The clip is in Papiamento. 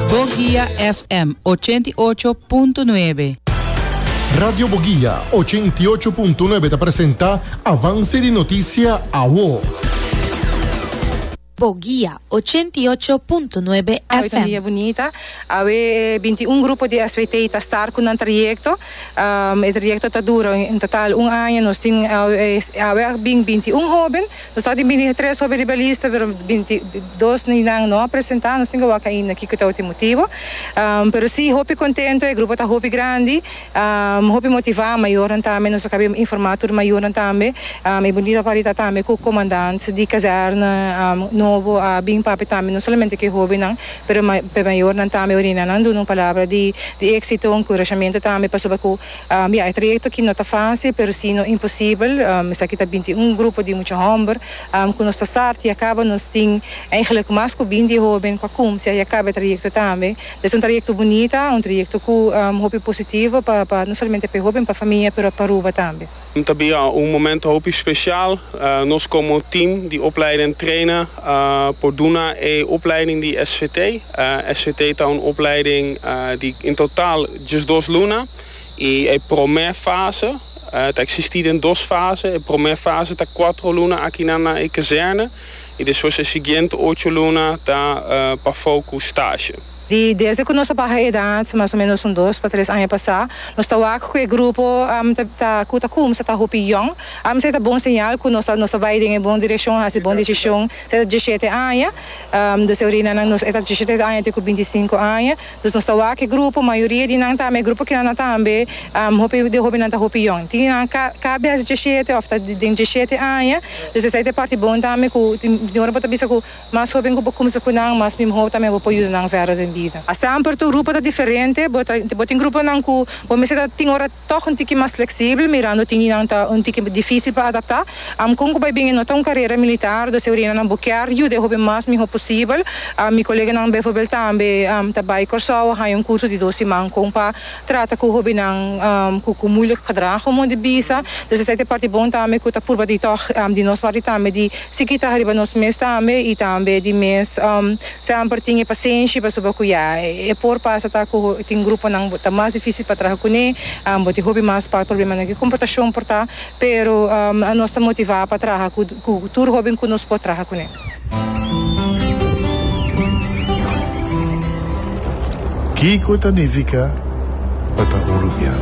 Boguia FM ochenta i ocho punto nuebe. Radio Boguia ochenta i ocho punto nuebe ta presenta Avance di Noticia Awo. Boguia ochenta i ocho punto nuebe FM. Awe ta un dia bunita, awe e binti i un grupo di SVT ta start cu nan trayecto, e trayecto ta dura en total un aña, nos tin awe a bin binti i un hoben, Nos no a tin bini tres hopi riba lista, pero binti dos di nan no a presentá, nos tin ke wak ainda kiko tabata e motibu. Pero sí, hopi kontento, e grupo ta hopi grandi, hopi motivá, mayornan tambe, nos a kabia informá tur mayornan tambe. E bunita part di ta tambe ku komandant di kazèrna nobo a bin papia tambe, no solamente ku e hóbennan, pero e mayornan tambe, orinan nan duna un palabra di éksito, un enkurashamentu tambe, pasobra ku Ya, e trayecto ki no ta facil, pero si no imposibel. Esaki ta binti un grupo di mucha homber. Cu nos ta start y acaba nos tin eigenlijk mas cu binti hoben cua cumcia y acaba e trayecto tambe. Es un trayecto bunita, un trayecto cu hopi positivo pa pa no solamente pa e hoben, pa famia, pero pa Aruba tambe. Ta bin ya un momento hopi special. Nos como team di opleiding trainer por duna e opleiding di SVT. SVT ta un opleiding di in total Djes dos luna i e promé fase ta eksistí den dos fase. E promé fase ta kuatro luna aki nan na e kazerne i despues e siguiente ocho luna ta pafou ku stasje. Desde ku nos a baha edad, mas o menos un dos pa tres aña pasá, nos ta wak ku e grupo ku ta kumsa ta hopi yòn. Esei ta bon señal ku nos a bai den e bon direkshon, a hasi bon desishon. Esei ta djishete aña. Nos e orinanan e ta djishete aña te ku binti sinku aña. Dus nos ta wak e grupo, mayoria di nan ta ama e grupo kinan na ta ama be, hopi di hobinan ta hopi yòn. Tin di nan ka ka bes diesshete òf ta den diesshete aña, dus esei ta e parti bon tambe ku tin tin ora bo ta bisa ku mas hoben ku bo kumsa ku nan mas mihó tambe bo por yuda nan vèrdè den bida. Astamper tur grupo ta diferente, bo ta bo tin gruponan ku bo mester ta tin ora. Tòg un tiki mas fleksibel, mirando tin di nan ta un tiki difísil pa adaptá. Amcun ku bai bini no ta un karera militar, do Seurinanan bo kier yuda e hopi mas mihó posibel. Mi koleganan beivoorbeeld tambe ta bai Kòrsou a haña un kurso di dos siman kon pa trata ku hobinan ku muilik gedrag komo di bisa. Dus esei ta e parti bon tambe ku ta purba di tòg di nos parti tambe di sigi traha riba nos mes tambe i tambe di mes. Se amper tin e pasenshi pasobra ku ya e por pasa ta ku tin gruponan bo ta mas difisil pa traha kuné, bo tin hopi mas pal problemanan ku komportashon por ta, pero anos ta motivá pa traha ku ku tur hóben ku nos por traha kuné. Kiko ta nifiká pa ta un rubian?